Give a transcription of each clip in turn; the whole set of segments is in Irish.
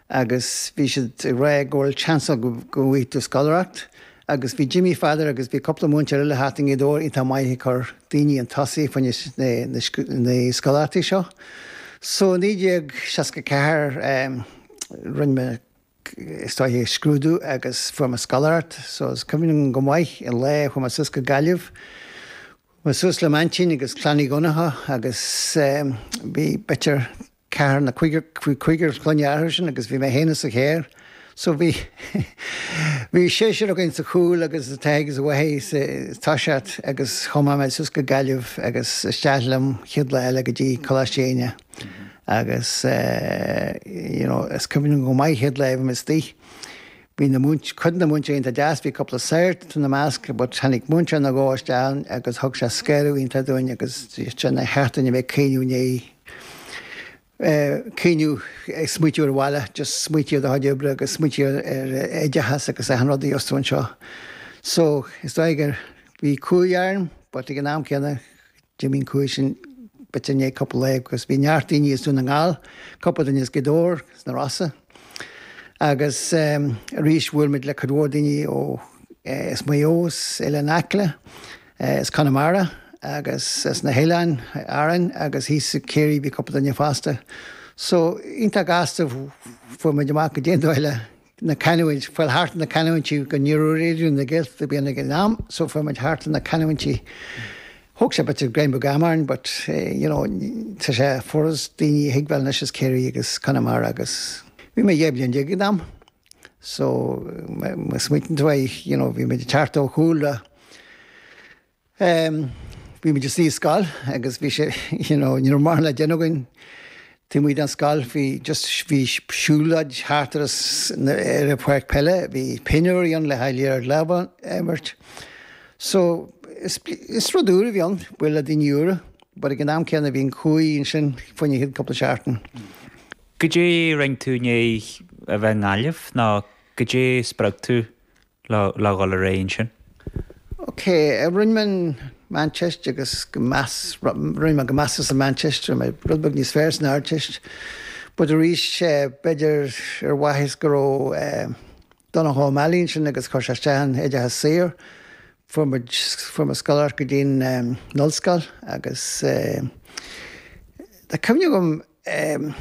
agus bhí siad ag rá go bhfuil seans ann go bhfaighidh tú scoláireacht agus bhí Jimmy Pheadair agus bhí cúpla múinteoir eile thart i nGaoth Dobhair iad iontach maith ag cur daoiní chun tosaigh faoi na scoláireachtaí seo. So i 1964 rinne mé is dóigh é scrúdú agus fuair mé scoláireacht so is cuimhin liom go maith an lá a chuaigh mé suas go Gaillimh. Chuaigh mé suas le m'aintín agus Clann Uí Dhonnacha agus bhí b'fhéidir, ceathrar nó cúigear clainne acu sin agus bhí mé fhéin insa charr so bhí bhí seisear againn sa chúl agus an t-athair agus an mháthair sa toiseacht agus chuaigh mé mé suas go Gaillimh agus isteach liom chéad lá eile go dtí Coláiste Éinne agus you know is cuimhin liom go maith chéad lá a bhí mé istigh Bhí na, cuid na múinteoirí iontach deas, bhí cúpla sagart ina measc but tháinig múinteoir nó dhó isteach agus thug sé scanradh iontach dúinn agus dúirt sé nár cheart dúinn a bheith ag caoineadh ná ag caoineadh ag smaoitiú ar an bhaile just smaoitiú ar do chuid oibre agus smaoitiú ar ar oideachas agus achan rud ar fhios tú anseo so is dóigh go raibh cumhaidh orm but ag an am céanna D'imigh an chumhaidh sin b'fhéidir i ndiaidh cupla lae agus bhí neart daoine as Dún na nGall, cupla duine as Gaoth Dobhair, as na Rossa agus arís bhuail muid le cuid mhór daoine ó as Maigh Eo, as Oileán Acla, as Conamara agus as na hOileáin Árainn agus thíos i Ciarraí bhí cupla duine fosta. So iontach gasta fuair muid amach goidé an dóigh le na canúint, fáil thart na canúintí nó ní raibh Raidió na Gaeltachta beo ann ag an am, so fuair muid thart na canúintí. Thóg sé b'fhéidir gráinnín beag ama orainn but you know tá sé furas daoine a thuigbheáil anois as Ciarraí agus Conamara agus bhí mé dhá bhliain déag ag an am so smaoitíonn tú aye you know bhí muid ag teacht ó chúl Em, bhí muid istigh i scoil agus bhí sé, you know, ní raibh mórán le déanamh againn taobh amuigh den scoil, bhí just, bhí siúloid thart ar an, ar an pháirc peile, bhí pinniúirí ann le haghaidh liathróid láimhe a imirt. So, is, is rud úr a bhí ann, bualadh le daoine úra, but ag an am céanna bhí an cumhaidh ansin fá choinne an chéad cúpla seachtain. Goidé a rinne tú i ndiaidh a bheith i nGaillimh, nó goidé a spreag tú le dhul ar aghaidh ansin. OK, rinne mé an Mheánteist agus go meas, rinne mé go measartha sa Mheánteist, rud beag níos fearr san Ardteist, but arís, b'fhéidir ar mhaithe go raibh Donncha O'Malley ansin agus chuir sé isteach an t-oideachas saor, fuair muid, fuair mé scoláireacht go dtí an Ollscoil agus tá cuimhne agam, em.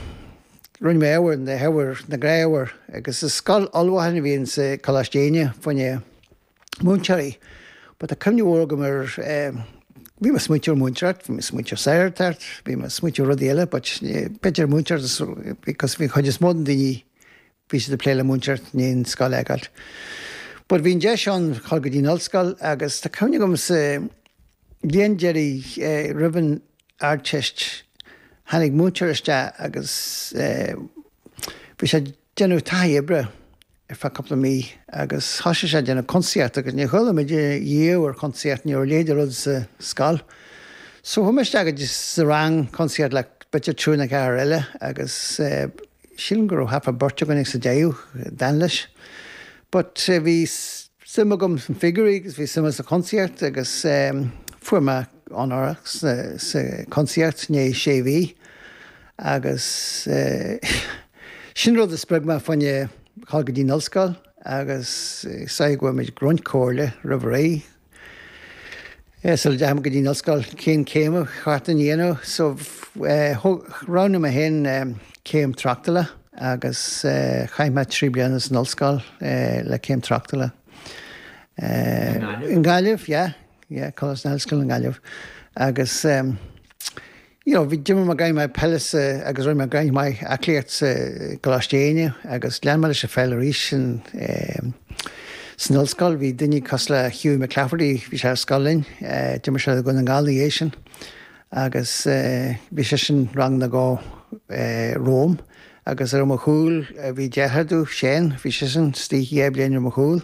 rinne mé ábhair na hábhair na gnáthábhair agus is scoil ullmhúcháin a bhí in sa Coláiste Éinne fá choinne múinteoirí but tá cuimhne mhór agam ar em. bhí mé ag smaointiú ar mhúinteoireacht, bhí mé ag smaointiú ar shagartacht, bhí mé ag smaointiú ar rudaí eile but b'fhéidir múinteoireacht because bhí an chuid is mó de na daoine Bhí siad ag plé le múinteoir bunscoile a fheiceáilt. But, bhí an deis ann dhul go dtí an ollscoil agus tá cuimhne agam sa bhliain deiridh roimh an Ardteist tháinig múinteoir isteach agus bhí sé ag déanamh taithí oibre ar feadh cúpla mí agus thoisigh sé ag déanamh cuntasaíocht agus níor chuala muid riamh ar chuntasaíocht, ní raibh a leithéid de rud sa scoil. So chuaigh mé isteach sa rang cuntasaíocht le b'fhéidir triúr nó ceathrar eile agus. Sílim go raibh thart fá bheirt againn ag sa deireadh a d'fhan leis. But bhí suim agam sna figiúirí agus bhí suim sa chuntasaíocht agus fuair mé onóracha sa chuntasaíocht i ndiaidh sé mhí agus sin rud a spreag mé fá choinne a dhul go dtí an ollscoil agus is dóiche go bhfuair muid roinnt comhairle roimh ré. Sula dteachaigh muid go dtí an ollscoil, cén céim ba cheart dúinn a dhéanamh? So, roghnaigh mé féin céim tráchtála agus chaith mé trí bliana san ollscoil le céim tráchtála. I nGaillimh? I nGaillimh, yeah, yeah, Coláiste na hOllscoile i nGaillimh. Agus. you know bhí d'imir mé gráinne maith peile sa agus rinne mé gráinne maith aclaíocht sa gColáiste Éinne agus lean mé leis an pheil arís sin eh san ollscoil bhí duine cosúil le Hughie McClafferty bhí sé ar scoil linn eh d'imir sé le Dún na nGall na dhiaidh sin agus eh bhí sé sin rang nó dhó eh romham agus ar mo chúl eh, bhí deartháir dó Seán bhí sé sin istigh dhá bliain ar mo chúl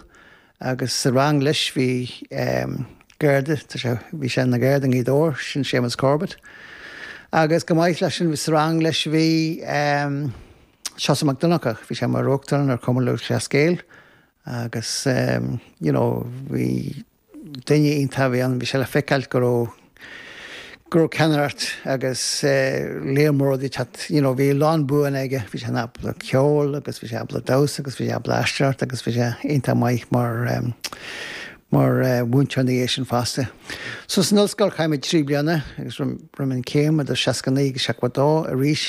Agus sa rang leis bhí ehm Garda, tá sé, bhí sé ina Gharda i nGaoth Dobhair, sin Séamus Corbett. Agus chomh maith leis sin sa rang leis bhí ehm Seosamh Mac Donncha, bhí sé mar Uachtarán ar Chumann Lúthchleas Gael agus ehm you know bhí duine iontach a bhí ann, bhí sé le feiceáilt go raibh, go raibh ceannaireacht agus lear mór rudaí ag teacht you know bhí a lán buanna aige bhí sé ábalta ceol agus bhí sé ábalta damhsa agus bhí sé ábalta aisteoireacht agus bhí sé iontach maith mar mar mhúinteoir na dhiaidh sin fosta. So san ollscoil chaith mé trí bliana agus rinne mé an chéim idir 69 agus 72 arís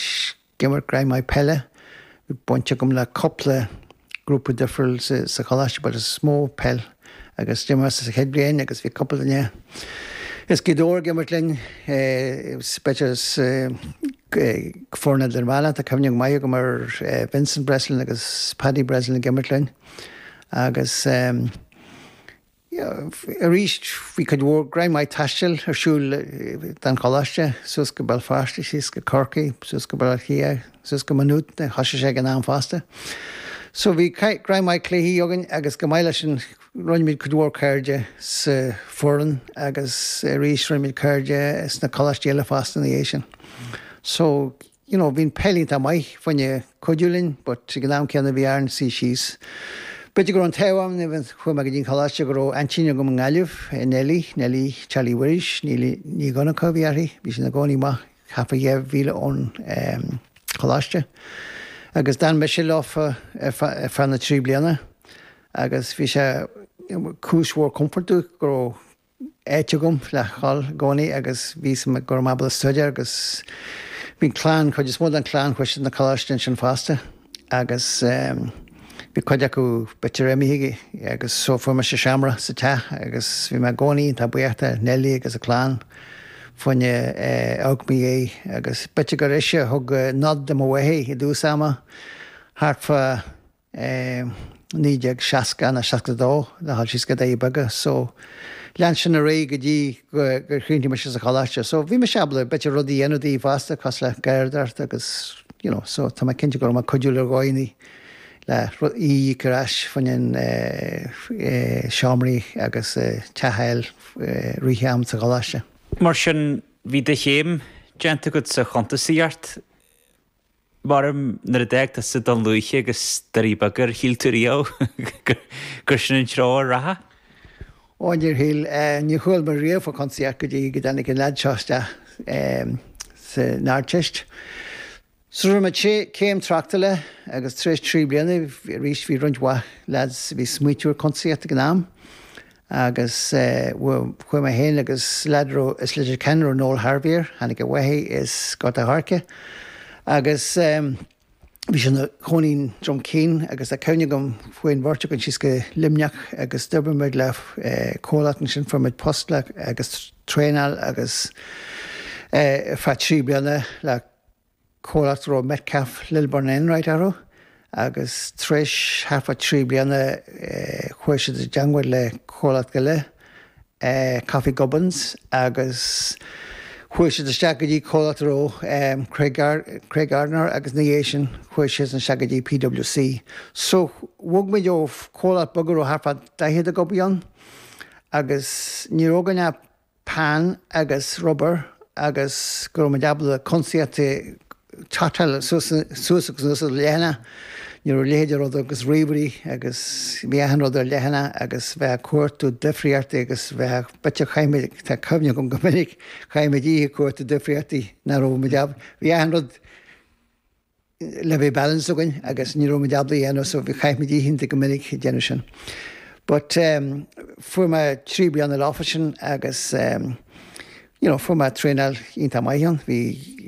D'imir gráinne maith peile. Bhí baint agam le cúpla grúpa difriúil sa choláiste but is mó peil agus d'imir mé sa chéad bhliain agus bhí cúpla duine as Gaoth Dobhair ag imirt linn, go speisialta sna foirne idirmheánacha, tá cuimhne maith agam ar Vincent Breslin agus Paddy Breslin ag imirt linn agus yeah, arís bhí cuid mhór greim maith taistil ar siúl don choláiste, suas go Béal Feirste, síos go Corcaigh, suas go Baile Átha Cliath, suas go Maigh Nuad, a thosaigh sé ag an am fosta. So bhí greim maith cluichí againn agus chomh maith leis sin rinne muid cuid mhór cairde sa foireann agus arís rinne muid cairde sna coláistí eile fosta ina dhiaidh sin. So. you know bhí an peil iontach maith, fá choinne cuidiú linn but ag an am céanna bhí orainn suí síos. B'fhéidir go raibh an t-ádh orm even chuaigh mé go dtí an coláiste go raibh aintín agam i nGaillimh, Nellie, Nellie Charlie Mhuiris, Neilí Nic Dhonnacha a bhí uirthi, bhí sí ina cónaí amach thart fá dheich míle ón ehm choláiste agus d'fhan mise leofa ar feadh ar feadh na trí bliana agus bhí sé cúis mhór comfort dúinn go raibh áit agam le dhul i gcónaí agus bhí fhios agam go raibh mé ábalta staidéar agus bhí an clann, chuid is mó den chlann chuaigh siad na coláiste ansin fosta agus bhí cuid acu b'fhéidir imithe agus so fuair mise seomra sa teach agus bhí mé i gcónaí iontach buíoch de Neilí agus a clann fá choinne amharc i mo dhiaidh agus b'fhéidir gur ise a thug nod do mo mháthair i dtús ama thart fá i 1960 nó 62 le dhul síos go Doirí Beaga so lean sin ar aghaidh go dtí gur chríochnaigh mise sa choláiste so bhí mise ábalta b'fhéidir rudaí a dhéanamh daoithe fosta cosúil le garradóireacht agus you know so tá mé cinnte go raibh mé cuidiúil ar dhóigheannaí le í a íoc ar ais fá choinne an seomraí agus teach a fháil i rith an am sa choláiste. Mar sin bhí do chéim déanta agat sa chuntasaíocht. Mairim nuair a d'fhág tusa Dún Lúiche agus Doirí Beaga ar shíl tú riamh gur sin an treo a rachfá? Ó níor shíl, níor chuala mé riamh fá chuntasaíocht go dtí go dtáinig an lead seo isteach san Ardteist. So rinne mé céim tráchtála agus tar éis trí bliana arís bhí roinnt mhaith leads a bhí ag smaoitiú ar chuntasaíocht ag an am Agus chuaigh mé féin agus lead a raibh as Leitir Ceanainn a raibh Noel Harvey air, tháinig a mháthair as Gort a' Choirce. Agus bhí sé ina chónaí i nDroim Caoin agus tá cuimhne agam chuaigh an bheirt againn síos go Luimneach agus d'oibrigh muid le comhlacht ansin, fuair muid post le agus traenáil agus ar feadh trí bliana le. comhlacht a raibh Metcalfe Lilburn Enright orthu agus tar éis thart fá trí bliana chuaigh siad i dteagmháil le comhlacht eile Coffey Gubbins agus chuaigh siad isteach go dtí comhlacht a raibh Craig Craig Gardner agus ina dhiaidh sin chuaigh siad isteach go dtí PWC. So bhog muid ó comhlacht beag a raibh thart fá 40 ag obair ann agus ní raibh againn ach peann agus rubber agus go raibh muid ábalta cuntasaíocht total suas suas agus anuas ar leathanach ní raibh a leithéid de rud agus ríomhairí agus bhí achan rud ar leathanach agus bheifeá ag cuartú difríochtaí agus bheifeá b'fhéidir chaith muid tá cuimhne agam go minic chaith muid oíche ag cuartú difríochtaí nach raibh muid ábalta bhí achan rud le bheith balanced againn agus ní raibh muid ábalta é a dhéanamh so bhí chaithfimid oícheanta go minic ag déanamh sin. But em fuair mé trí bliana san office sin agus em you know fuair mé traenáil iontach maith ann. Bhí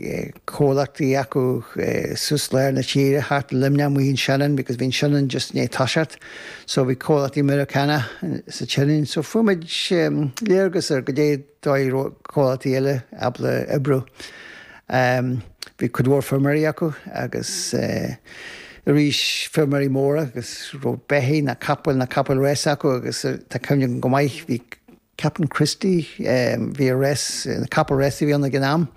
eh, comhlachtaí acu eh, suas lár na tíre thart i Luimneach amuigh in Shannon because bhí an Shannon just i ndiaidh toiseacht so bhí comhlachtaí Meiriceánacha eh, sa tSionainn so fuair muid em, léargas ar goidé dóigh a raibh comhlachtaí eile ábalta oibriú. Bhí cuid mhór feirmeoirí acu agus arís feirmeoirí móra agus raibh beithigh ná capaill ná capaill rása acu agus tá cuimhne agam go maith, bhí Captain Christy, bhí a rás, capall rása a bhí ann ag an am,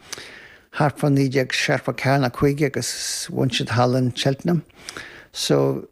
thart fá 1974 ná 5 agus bhain siad thall in Cheltenham. So.